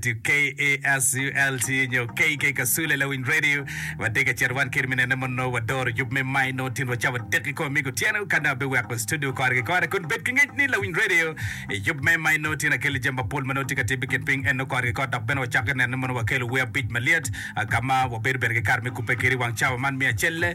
to KASULT nyo KK Kasule Lawiny Radio. Watye ka cito wan kit minene ma nongo wadoro yub me May nongo tin wacawa dek ki kor migo otyeno ka dong abiweko studio kore ki kore kun bed ki ngec ni Lawiny Radio i yub me May nongo tin akeli jami mapol ma nongo tye ka timmi i kin piny en nongo kore ki kore dok bene wacako ki neno ni mono wakelo wer abic malyet ah, ka ma wabedo bene ki kare me kubbe kiri i wang cawa man me acel.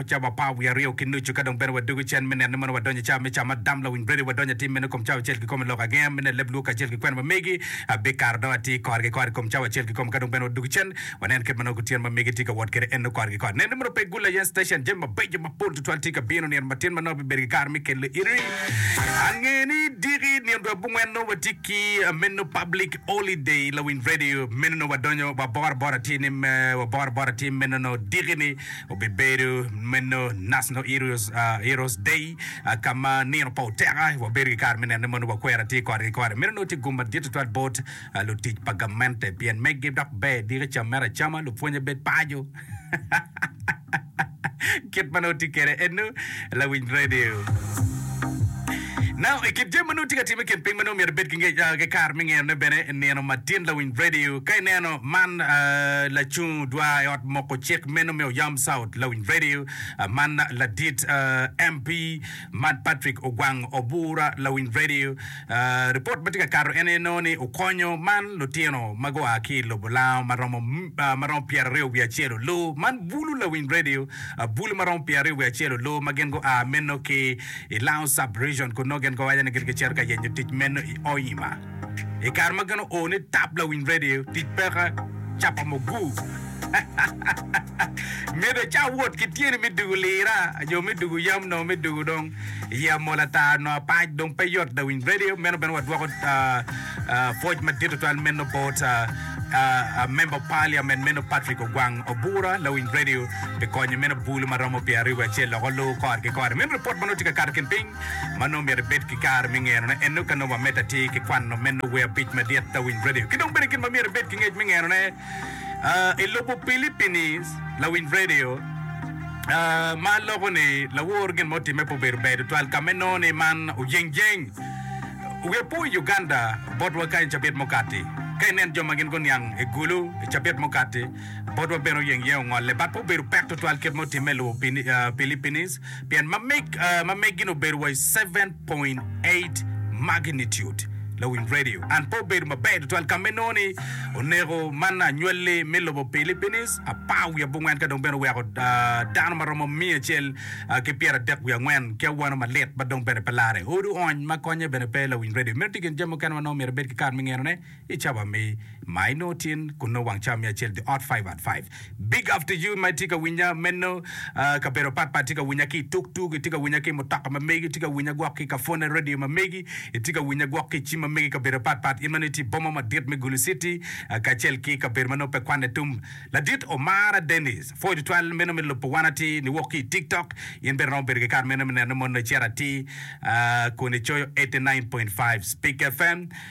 Cawa apar wiye aryo ki nucu ka dong bene wadwogo cen me nino ni mono wadonyo i cawa me Cam Adam Lawiny Brady wadonyo atim mene kom cawa acel kikomo i lok agenge me neno leb lwok kacel ki kwena ma megi abikaro dong atir kore ki kore i kom cawa acel kikomo ka dong bene wadwogo cen wanen kit ma nongo kutyeno ma megi tye ka wot kwede enno kore ki kore neno ni mono pe gul aye station jami mabeco mapol tutwal tye ka bino nino matin ma nongo abibedo ki kare me kelo iri ange ni diki nino dwe abongwen nongo watye ki meno public holiday Lawiny Radio meno nongo wadonyo waboro abora atir ni me waboro abora atir meno nongo diki ni Obibedo meno National Heroes, uh, Heroes Day, uh, ka ma nino pa oteka wabedo ki kare me neno ni mono wakwera tye kore ki kore. Meno nongo tye gum madit tutwal bot uh, lutic pa gamente pien megi dok ber diki cam mere acama lupwonye bed paco. Kit ma nongo tye kwede eno. Lawiny Radio. Now, i kit jami ma nongo tye ka timme i kin piny ma nongo myero ibed ki nge- ah, ki kare me ngerone bene, nino matin Lawiny Radio. Ka ineno man ah, lacung odwa i ot moko cik meno me Oyam South Lawiny Radio, ah, man ladit ah, MP man Patrick Ogwang Obura Lawiny Radio, Ripot ma tye ka kato en aye nongo ni okonyo man lutino ma gua ki i lobo lango ma romo ma romo pyeraryo wiye acel olo man bulu lawiny radio bulu ma romo pyeraryo wiye acel olo ma gin gua meno ki i Lango Sub-Region kun nongo gin giwaco ni gin gicito ka yenyo tic meno i Hoima. I kare ma gin oo ni tap lawiny radio tic peka capa muguu myero ica wot ki tyeni me dugu lira nyo me dugu yam nongo me dugu dong. Iye amol ata, nongo apac dong pe yot lawiny redio. Meno bene wadwoko pwoc madit tutwal meno bot member of parliament meno Patrick Ogwang Obura, lawiny redio pi konyo meno bulu ma romo pyera aryo wiye acel loko luu kor ki kor. Meno ripot ma nongo tye ka kato kin piny ma nongo myero ibed ki kare me ngenone. Eno ka nongo wamedde atir ki kwano meno wer abic madit lawiny redio ki dong bene gin ma myero ibed ki ngec me ngenone. I lobo Pilipini, lawiny redio ma loko ni lawor gin ma otimme pe obedo ber tutwal ka ma inongo ni man ojeng jeng. Wiya po i Uganda botwa kany i cabit mukati. Ka ineno jo ma gin guniang i gulu i cabit mukati, botwa bene oyeng iye ongolle. But pe obedo pek tutwal kit ma otimme i lobo Pilipini pien ma meg ma meggi-ni obedo wa i seven point eight magnitude lawiny radio and pe obedo maber tutwal ka me nongo ni oneko man anywalli me lobo Philippines apar wiye abongwen ka dong bene oweko dano ma romo miya acel ki pyeradek wiye angwen ki awano malit ma dong bene pe lare odu ony ma konye bene pe lawiny radio meno tye gin jami mukene ma nongo myero ibed ki kar me ngeno ne I cawa me ma i nongo tin kun nongo wang cawa me acel dye ot five at five big up to you ma itye ka winya meno kabedo pat pat itye ka winya ki tuk tuk itye ka winya ki mutoka ma megi itye ka winya gwok ki kafone radio ma megi itye ka winya gwok ki cim ma megi kabedo pat pat in meno itye i boma madit me gulu city kacel ki kabedo ma nongo pe kwane tum ladit omara Dennis pwod tutwal meno me lubo wan ati ni wok ki tik tok in bene romo bedo ki kare meno me neno mono icito ati kun icoyo eighty nine point five speak fm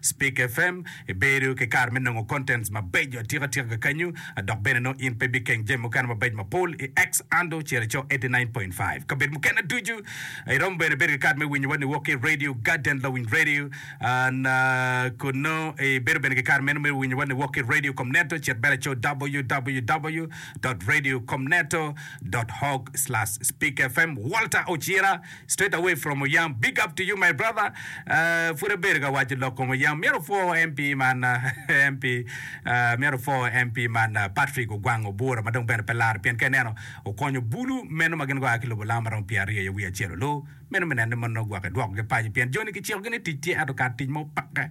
Speak FM, Ibedo ki kare me nongo contents mabeco atika tika kakanyo, dok bene nongo in pe ibikeng jami mukene mabeco mapol i X Ando cel ico eighty nine point five kabedo mukene ducu. Iromo bene bedo ki kare me winyowa niwok ki Radio Garden Lowing Radio and kun nongo ibedo bene ki kare meno me winyowa niwok ki Radio Komneto cit bene ico www dot radio komneto dot horg slash speak FM. Walter Ocira. Straight away from oyam big up to you my brother pud abedo ka waco lok kom oyam myero opwo MP man MP myero opwo MP man Patrick ogwang obura ma dong bene pe laro pien ka ineno okonyo bulu meno ma gin gua ki lobo lam ma romo pyer aryo ya wiye acel olu meno me nene ni moni nongo gwok idwoko gi paco pien joni kiciko gi ni tic tye ento kar tic ma opake